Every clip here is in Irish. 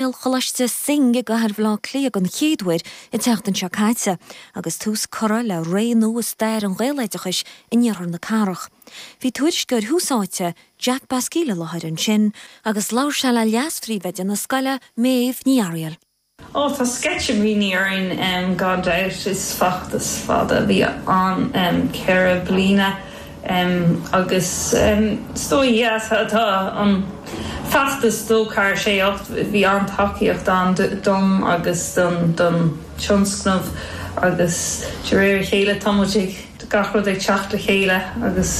Ghaelcholáiste Synge i gcathair Bhaile Átha Cliath den chéad uair an tseachtain seo caite agus tús curtha le ré nua i stair an ghaeloideachais in iarthar na cathrach. Bhí tuairisceoir Tús Áite, Jack Basquille i láthair ansin agus labhair sé le leas-phríomhoide na scoile, Méabh Ní Fhearaíl. Oh tá sceitimíní orainn gan dabht. Is feachtas fada a bhí ann, ceithre bliana, Agus is dóigh go dtí seo tá an feachtas D 2 4 6 8, bhí an-tacaíocht ann dom agus don tionscnamh agus de réir a chéile tá muid ag, gach rud ag teacht le chéile agus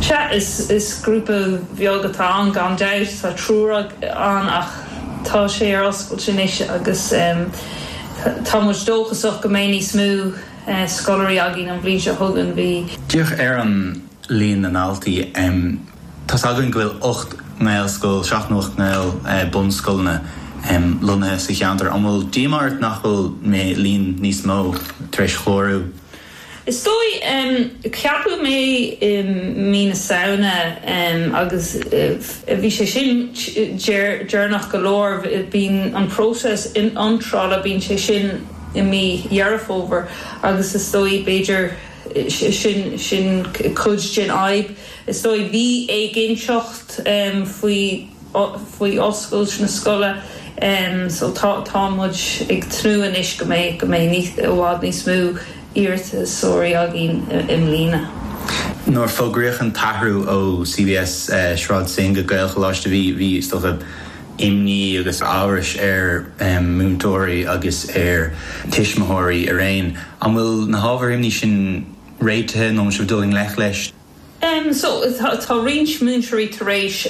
sea, is grúpa bheag atá ann gan dabht, tá triúr ann ach tá sé ar oscailt anois agus tá muid dóchasach go mbeidh níos mó. scoláirí againn an bhliain seo chugainn. Bhí. Féach ar an líon na ndaltaí. Tá's againn go bhfuil ocht nGaelscoil, seacht nó ocht nGael bunscoileanna lonnaithe sa cheantar. An bhfuil díomá ort nach bhfuil líon níos mó tar éis chlárú? Is dóigh. Ceapadh mé i mí na Samhna agus bhí sé sin deireanach go leor. Bíonn an próiseas iontrála, bíonn sé sin. i mí Dheireadh Fómhair agus is dóigh, b'fhéidir, sin, sin cuid den fhadhb, is dóigh, bhí éiginnteacht faoi, faoi oscailt na scoile so tá, tá muid ag tnúth anois go mbeidh, go mbeidh níos, i bhfad níos mó iarratasóirí againn i mbliana. Nuair a fógraíodh an t-athrú ó CBS Sráid Synge go Gaelcholáiste bhí, bhí, is dócha, imní agus amhras ar mhúinteoirí agus ar thuismitheoirí araon. An bhfuil na hábhair imní sin réitithe nó an bhfuil sibh ag dul i ngleic leis? Sea, tá roinnt múinteoirí tar éis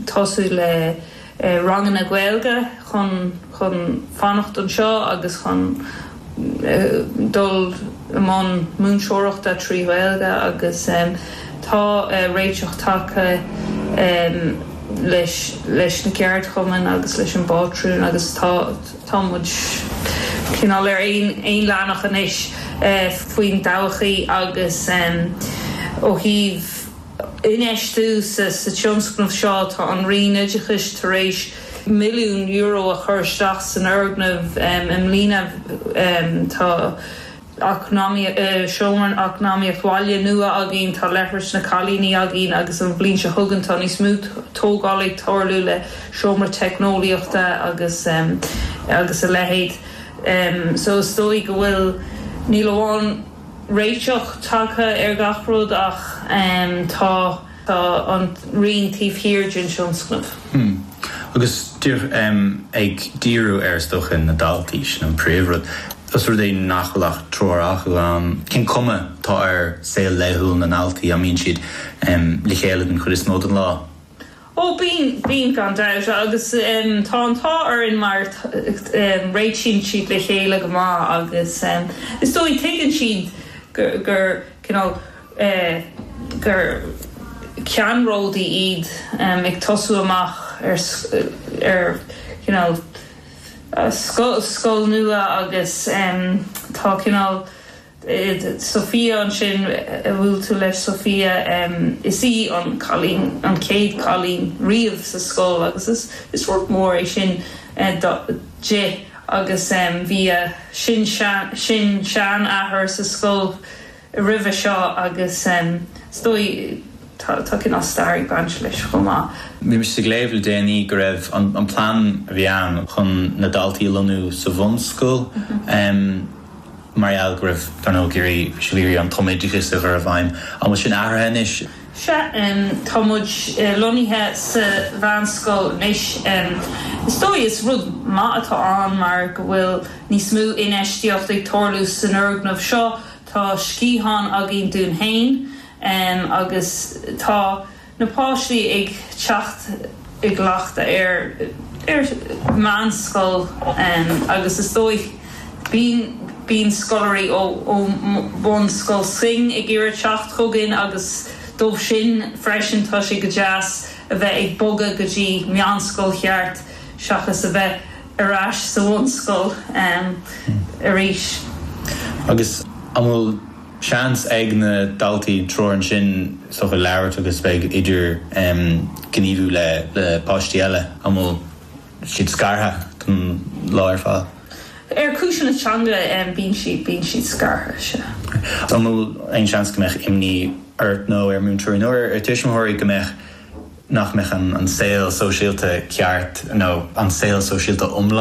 tosú le ranganna Gaeilge chun fanacht anseo agus chun dul i mbun múinteoireachta trí Ghaeilge agus tá réiteach tagtha leis na ceardchumainn agus leis an bpátrún agus tá muid cineál ar aon leathanach anois faoin dtodhchaí agus ó thaobh infheistiú sa tionscnamh seo tá an Roinn Oideachais tar éis milliún euro a chur isteach san fhoirgneamh i mbliana tá seomra eacnamaíocht bhaile nua againn tá leithris na cailíní againn agus an bhliain seo chugainn tá níos mó tógáil ag tarlú le seomra teicneolaíochta agus agus a leithéid so is dóigh go bhfuil níl amháin réiteach tagtha ar gach rud ach tá. Tá an Roinn taobh thiar den tionscnamh. Agus ag díriú ar, is dócha, na daltaí, sin an príomhrud. Os rud é nach bhfuil ach triúr acu ann, cén chuma atá ar saol laethúil na ndaltaí? An mbíonn siad le chéile den chuid is mó den lá? Ó bíonn, bíonn gan dabht. Agus tá an t-ádh orainn mar réitíonn siad le chéile go maith agus is dóigh tuigeann siad gur cineál, gur ceannródaí iad ag tosú amach ar scoil nua agus tá cineál Sophia ansin a bhuail tú léi Sophia is í an cailín an chéad cailín riamh sa scoil agus is rud mór é sin di agus bhí a sin-seanathair sa scoil roimhe seo agus is dóigh tá cineál stair ag baint leis chomh maith. Bhí mise ag léamh le déanaí go raibh an plean a bhí ann chun na daltaí a lonnú sa bhunscoil mar gheall go raibh, dar ndóigh, ag iarraidh, bhí siad ag iarraidh an tumoideachas a chur i bhfeidhm. An bhfuil sin athraithe anois? Sea, tá muid lonnaithe sa mheánscoil anois. Is dóigh is rud maith atá ann mar go bhfuil níos mó infheistíocht ag tarlú san fhoirgneamh seo. Tá sciathán againn dúinn féin agus tá na páistí ag teacht i gcleachtadh air ar mheánscoil agus is dóigh bíonn scoláirí ó Bhunscoil Synge ag iarraidh teacht chugainn agus dóibh sin freisin tá sé go deas a bheith ag bogadh go dtí meánscoil cheart seachas a bheith ar ais sa bhunscoil arís. Agus an bhfuil seans ag na daltaí triúr ansin sórt a labhairt agus bheith ag idirghníomhú le páistí eile? An bhfuil siad scartha don lá ar fad? Ar chúiseanna teanga bíonn siad bíonn siad scartha, sea. An bhfuil aon seans go mbeadh imní ort nó ar múinteoirí nó ar tuismitheoirí go mbeadh nach mbeadh an saol sóisialta ceart nó an saol sóisialta iomlán.